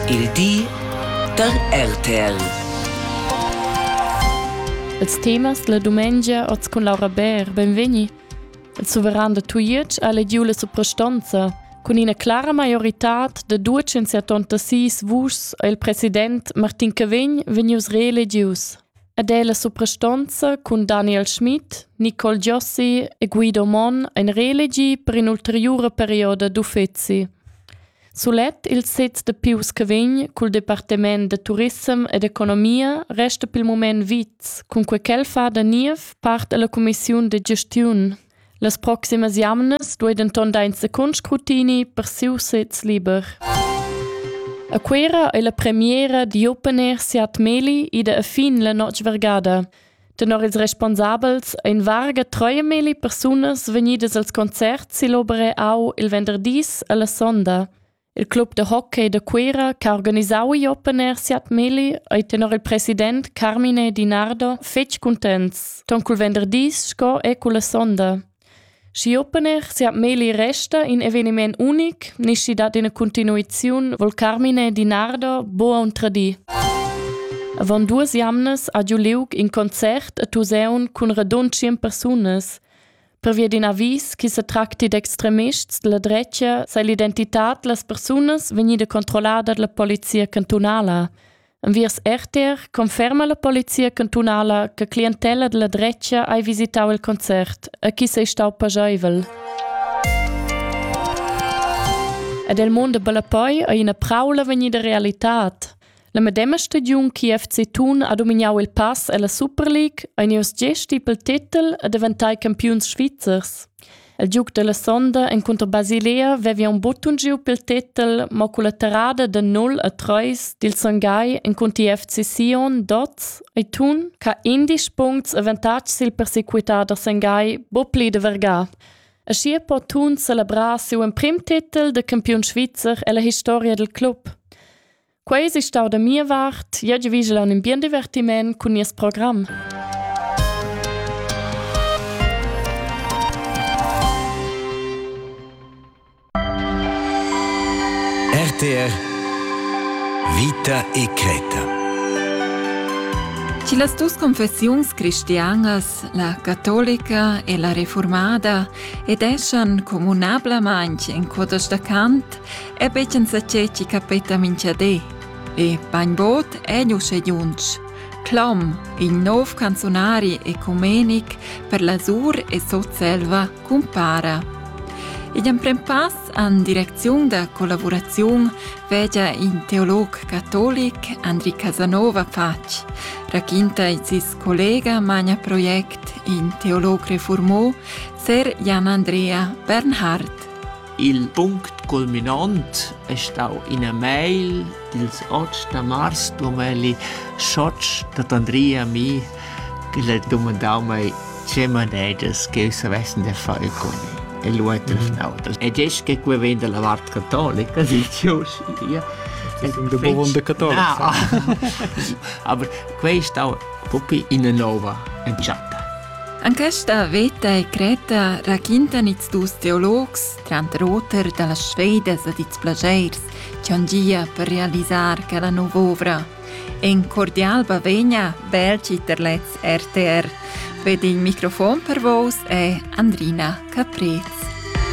Il di da RTL. Els temas la dumengia oz cun Laura Bär, benvegni. Il suveran da Tujetsch ha lediu la suprastonza cun ina clara maioritad de 276 vuschs e il president Martin Cavegn vegnius reeledius. Ed è la suprastonza cun Daniel Schmidt, Nicole Giossi e Guido Mon ein reelegi per in ulteriura perioda d'uffeci. Sulet il sez da pius che vegn cul departament da turissem ed economia resta pel mument vits, cunquai ch'el fa da niev part alla cumissiun da gestiun. Las proximas jamnas duei denton dar in secund scrutini per siu sez liber. A Cuera ei la premiera di open air Siat Meli ida a fin la notg vergada. Tenor ils responsabels ein varga treuemilli persunas vegnidas als concerts sill'opera Au il venderdis alla sonda. Il club de hockey de Cuera che ha organisau igl open air siat milli ei tenor il president Carmine Dinardo fetg cuntents, ton cul venderdis sco e culla sonda. Schi open er sia meglio resta in eveniment unic, nischi dat ina continuiziun vol Carmine Di Nardo boa un tradii. Avon duas jamnas ha giu liug in concert a Tuseun cun radund tschien persunas. Pervia d'in avis che se tracti d'extremists della drecia sei l'identità delle persunas vegnida controllada dalla polizia cantunala. Enviers RTR conferma la polizia cantunala che clientella della drecha hai visitau il concert e chi sei stau pajaivel. Ed il mondo bella poi è una praula vegnida realità. La medema stagiun che FC Thun ha dominato il pass alla Super League, ein ius gesti pel titel e diventai campiuns svizzers. Il giug dalla sonda encunter Basilea vevia un buttun giu pil tetel mo culla terrada da 0 a 3 dil Songai encunter FC Sion Dots e tun ca indisch puncts avantatgs sil persequitar da Songai bo pli de vergar. Aschi po tun celebrar siu emprim tetel de campiun svizzer ella historia del club. Quei si stau da mia vart, jeu vigel an in bien divertiment cun nies program. RTR Vita e Creta Ci las dus confessiuns cristianas, la catolica e la reformada, ed eschan communablamain in codas da Kant, E petschen sa ceci capeta minchadé. E bainbod è nu schediunch. Clom, il nov canzonari ecumenic per la Sur e Sotselva, cumpara. Igl emprem pass an direcziun da collaboraziun vegia in teolog catolic Andri Casanova Pac, raquinta il sis collega Magna Project in teolog reformò, Ser Jan Andrea Bernhard. Il punct culminont es stau ina mail dils otg da mars Dumelli Schotsch dad Andrea Mi ch'el ha dumandau mei tge manedas ch'jeu savessen da far cun el. E lu ha telefonau. E disch che quei vegn dalla vart catolica, dici uschia. Da Bovonde catolica. Aber quei stau propi ina nova entschatta. En questa veta e cretta raquintan ils dus teologs, tranter auter dalla Svedas ed ils plasceirs, che han gia per realisar quella nova ovra. En cordial bavegna Belgi per lez RTR. Ved il microfon per vos è Andrina Caprez.